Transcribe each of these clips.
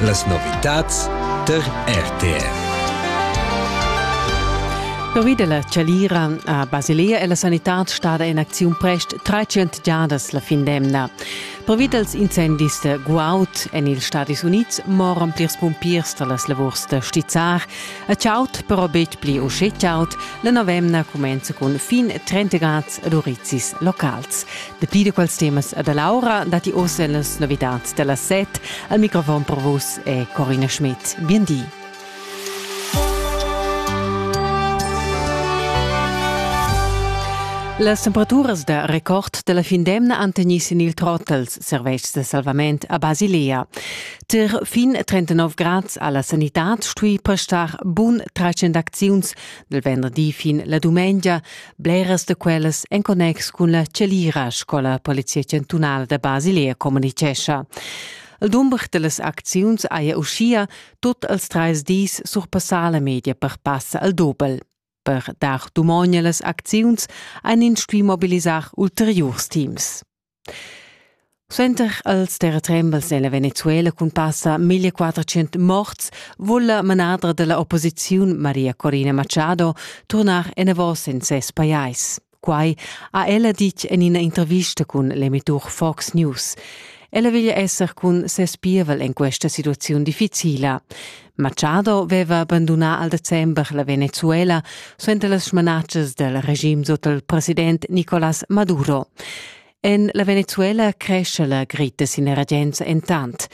Las novitads tar RTR. Pervi da la chalira a Basilea è la sanitad stada en acziun prest 300 giadas la fin d'emna. Pervi dals incendis da guaud en ils Stadis Unids moran plirs pumpiers da las lavurs da stizzar. A chaud però betg pli uschè chaud. La novemna cumenza cun fin 30 grads ad urizis locals. Dapi da quels temas e da Laura datti oz las novitads da las set. Al microfon per vus è Corina Schmidt. Bien di. Las temperaturas da record della fin d'emna han tegnì sin il trottels servetschs de salvament a Basilea. Ter fin 39 grads alla sanitad stui prestar bun 300 acziuns del venderdi fin la dumengia, Bleras da quellas en connex cun la Celira sco la Polizia chantunala da Basilea communicescha. Il dumber dallas acziuns haja uschia tot els treis dis surpassà la media per passa al dobel. Per dar dumogn las acziuns ein ins stuì mobilisar ulteriurs teams. Suenter als terratrembels è la Venezuela cun passa 1400 morts vul la manadra della opposiziun Maria Corina Machado turnar enavos en ses pajais. Quai ha ella ditg en ina intervista cun l'emitur Fox News. Ella veglia esser cun ses pievel en questa situaziun difficila. Machado veva bandunà al december la Venezuela suenter las smanatschas del regim sut il president Nicolás Maduro. En la Venezuela cresce la gritta sin regenza entant.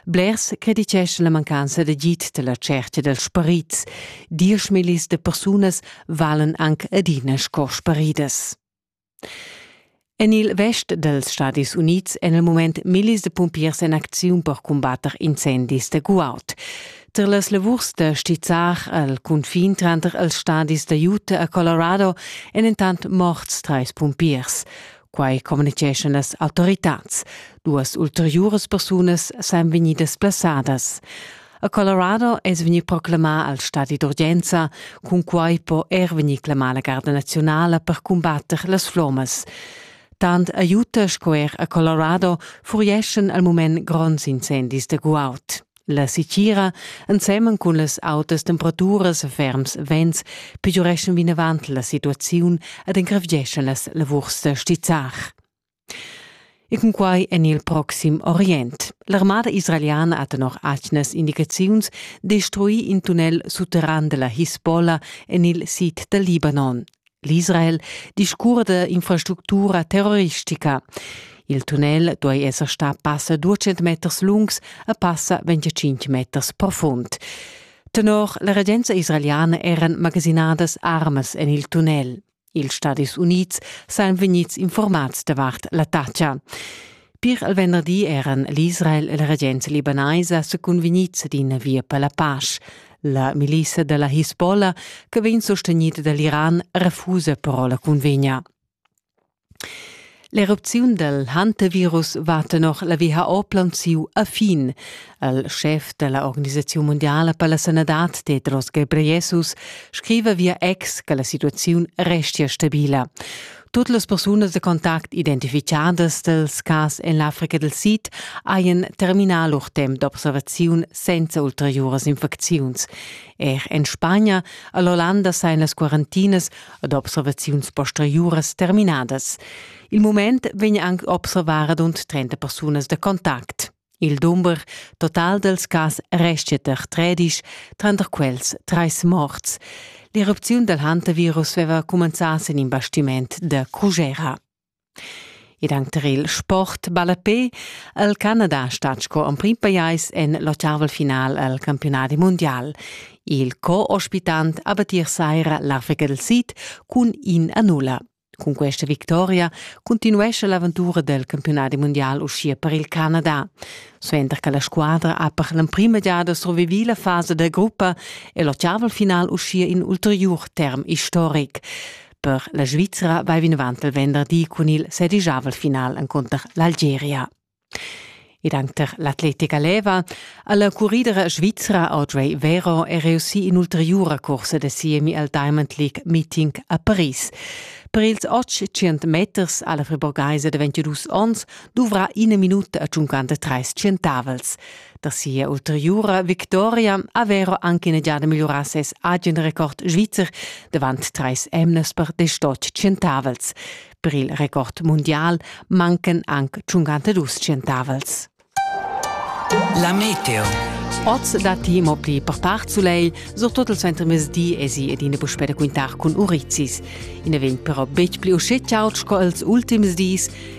Blers criticeschan la mancanza d'agid della cerchia dels parits. Dieschmillis de persunas valen anc adina sco sparidas. En il vest dals Stadis Unids èn il mument millis da pumpiers en acziun per cumbatter incendis da guaud. Tar las lavurs da stizzar al cunfin tranter els stadis da Utah e Colorado èn entant morts trais pumpiers. Quai communiceschan las autoritads. Duas ulteriuras persunas san vegnidas plasadas. A Colorado es vegni proclamà al stadi d'urgenza, cun quai po er vegnir clamà la Garda naziunala per cumbatter las flommas. Tant aiuta sco er a Colorado furieschan al mument gronds incendis da guaud. La sitgira, ensemen cun las autas temperaturas e ferms vents, pegiureschan vinavant la situaziun ed engrevgeschan las lavurs da stizzar. E cunquai en il proxim Orient. L'armada israeliana ha tenor atgnas indicaziuns destruì in tunnel sutterran da la Hisbollah en il sid dal Libanon. L'Israel discurda d'infrastructura terroristica. Il tunnel duai esser stà passa 200 meters lungs a passa 25 meters profund. Tenor la regenza israeliana eran magasinadas armas en il tunnel. Ils Stadis Unids sajan vegnids informads davart l'attacca. Pir il venderdi eran l'Israel e la regenza libanaisa sa cunvegnids d'ina via per la pace. La milissa della Hisbollah, che vegn sostegnida da l'Iran, refusa però la cunvegna. L'erupziun dal hantavirus va tenor la WHO plaunsiu a fin. Il schef della Organisazione Mondiale per la Sanadad, Tedros Ghebreyesus, scriva via ex che la situazione restia stabila. Tutte le persone de contact identificadas dels cas en l'Africa del Sid haien terminà lur temps d'observaziun senza ulteriuras infecziuns. Er en Spagna, all'Olanda sein las quarantinas ad observaziuns posteriuras terminadas. Il mument vegn anche observara rund 30 persunas da contact. Il dumber total dels cas restia ter 13, tranter quels treis morts. L'erupziun del hantavirus veva cumenzà sin in bastiment de Cugera. Ed anc tar il sport ballapé ha il Canada stat sco emprim pajais en l'ottavel final al campiunadi mundial. Il co-ospitant ha battir saira l'Africa del Sid cun in a nulla. Cun questa victoria continuescha l'aventura del campiunadi mundial uschia per il Canada. Suenter che la squadra ha per l'emprima giada survivì la fasa da gruppa è l'ottavel final uschia in ulteriur term istoric. Per la Svizra vai vinavant il venderdi cun il sedigiavel final encunter l'Algeria. Ed anche per l'atletica leva ha la curridera svizra Audrey Vero è reussì in ulteriura corsa da siemi al Diamond League meeting a Paris. Per ils 800 meters ha la friburgaisa de 22 onns duvrà ina minuta a 53 centavels. da sia ulteriura victoria aveva anche in giada migliorà ses agen record svizzer davant trais emnas per destot centavels. Per il record mondial mancan anche 52 centavels. La meteo. Oz datti mo pli per part sulegl, surtut il suentermezdi esi ed ina puspè da quintar cun urizzis. I na vegn però betg pli uschè chaud sco ils ultims dis